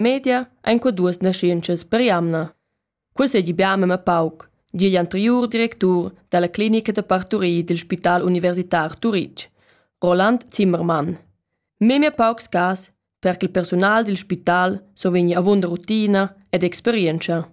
media ein qua duas naschientschas per jamna. Cussegli bia mema pauc, di igl anteriur directur dalla clinica da parturie dil Spital Universitar Turitg, Roland Zimmermann. Memia paucs cas per che il personal dil spital so vegni avunda rutina ed experienza.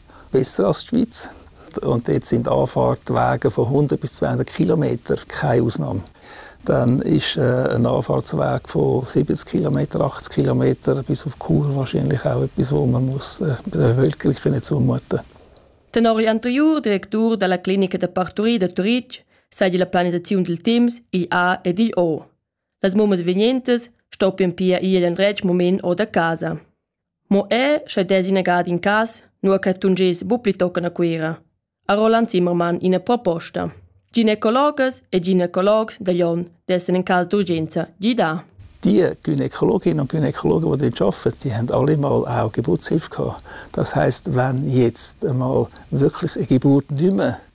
besser als Schweiz. Und dort sind Anfahrtwege von 100 bis 200 Kilometer, keine Ausnahme. Dann ist äh, ein Anfahrtsweg von 70 Kilometer, 80 Kilometer bis auf Chur wahrscheinlich auch etwas, wo man muss äh, der Bevölkerung können zumuten Den Henri Antriur, Direktor della Clinica da Parturie de Turitg, segue la planisazione del Teams IA ed IO. Las mumas venientas stoppian pia ir endretg mument o da casa. Mo er sche desi negad in cas, nua che tungess bu plitochen a Cuira, ha Roland Zimmermann ina proposta. Ginecologas e ginecologs da Jon dessen in cas d'urgenza gidar. Die Gynäkologinnen und Gynäkologen, die dort arbeiten, die haben alle mal auch Geburtshilfe gehabt. Das heißt, wenn jetzt einmal wirklich eine Geburt nicht mehr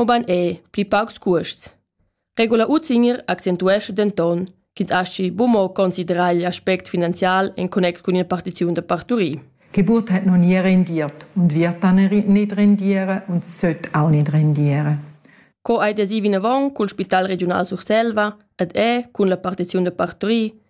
mobein ei pli paucs cuosts. Regula Utzinger accentuescha denton ch'ins aschi bumo considerar igl aspect finanzial en connect cun il partiziun da parturir. Geburt hat noch nie rendiert und wird dann nicht rendiere und sollte auch nicht rendiere. Co ei desi vinavon cul Spital Regional Surselva ed è cun la partiziun da parturir